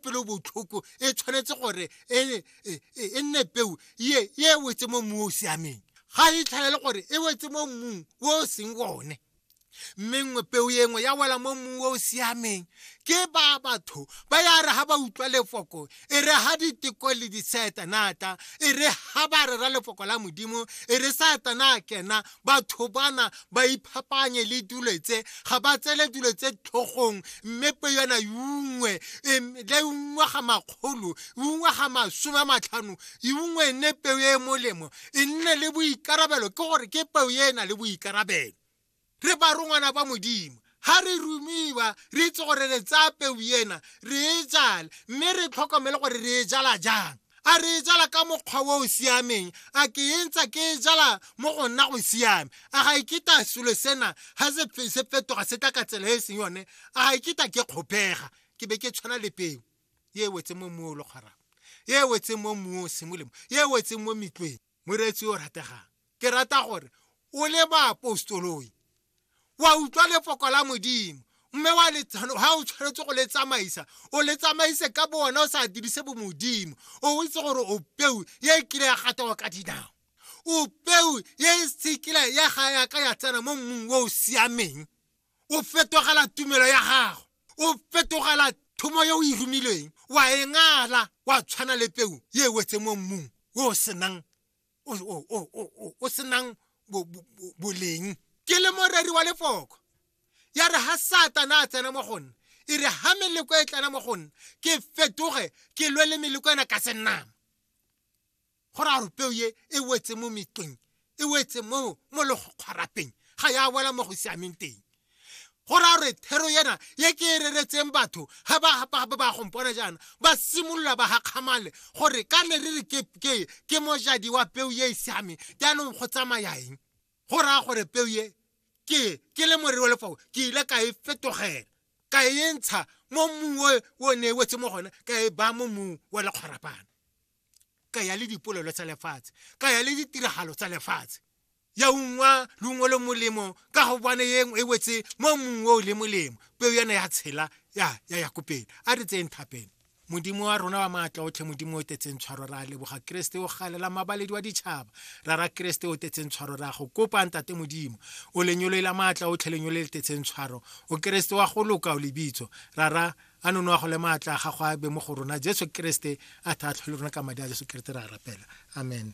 pelo botlhoko e tshwanetse gore e, e, e, e nne peu ye e wetse mo mmu o o siameng ga e tlhalele gore e wetse mo mmung o o seng one mme nngwe peu e nngwe ya wela mo mmung o o siameng ke ba batho ba ya re ga ba utlwa lefoko e re ga diteko le disaetanata e re ga ba rera lefoko la modimo e re saetana a kena batho bana ba iphapanye le dilo tse ga ba tsele dilo tse tlhogong mme pe yona yungwe le ungwe ga makgolo ungwe ga masome a matlhano ungwe e nne peo e e molemo e nne le boikarabelo ke gore ke peo e e na le boikarabelo re barongwana ba modimo ga re rumiwa re itse gore re tsaya peu ena re e jale mme re tlhokomele gore re e jala jang a re e jala ka mokgwa o o siameng a ke e ntsa ke e jala mo go nna go siame a ga ikita e selo sena ga se fetoga se tla ka tsela e e seng yone a ga ikita e ke kgopega ke be ke tshwana le peo e wetse mo mmu o le kgwarang e wetseng mo mmung o seng molemo e wetseng mo metlweng moreetsi o rategang ke rata gore o le baapostoloi wa utlwa lefoko la modimo mme wa letsano ha o tshwanetse go le tsamaisa o le tsamaise ka bo wena o sa dirise bomodimo o itse gore o peu ye e kile ya gatawa ka dinao o peu ye e sekile ya ga yaka ya tsena mo mmung o o siameng o fetogela tumelo ya gago o fetogela thomo yo o e romilweng wa e ngala wa tshwana le peu ye e wetse mo mmung o senang o senang boleng ke le moreri wa lefoko ya re ha satana a tsena mo go nna e re ha meleko e tlana mo go nna ke fetoge ke lwe le meleko ena ka senama go ra gore peo ye e wetse mo metleng e wetse mo mo legokgwarapeng ga ya wela mo go siameng teng go ra gore thero yena ye ke e reretseng batho ga ba gompona jaana ba simolola ba gakgamale gore ka ne re re ke mojadi wa peo ye e siameng jaanong go tsamaya eng go raya gore peo ye ke ke le morero wa lefao ke ile ka e fetogela ka e ntsha mo mmung o ne e wetse mo gone ka e baya mo mmung wa lekgwarapana ka ya le dipolelo tsa lefatshe ka ya le ditiragalo tsa lefatshe ya ungwa lungwe le molemo ka go bone yeng e wetse mo mong o le molemo peo yana ya tshela ya ya ya kopela a re tseng thapeng modimo wa rona wa maatla otlhe modimo o tetseng tshwaro ra leboga keresete o galela mabaledi wa ditšhaba ra ra keresete o tetseng tshwaro ra go kopa ntate modimo o lenyoloe la maatla otlhe lenyolo le tetseng tshwaro o keresete wa go loka o lebitso ra ra a nono a go le maatla a gago a be mo go rona jesu keresete a tha a tlhole rona ka madi a jesu keresete ra rapela amen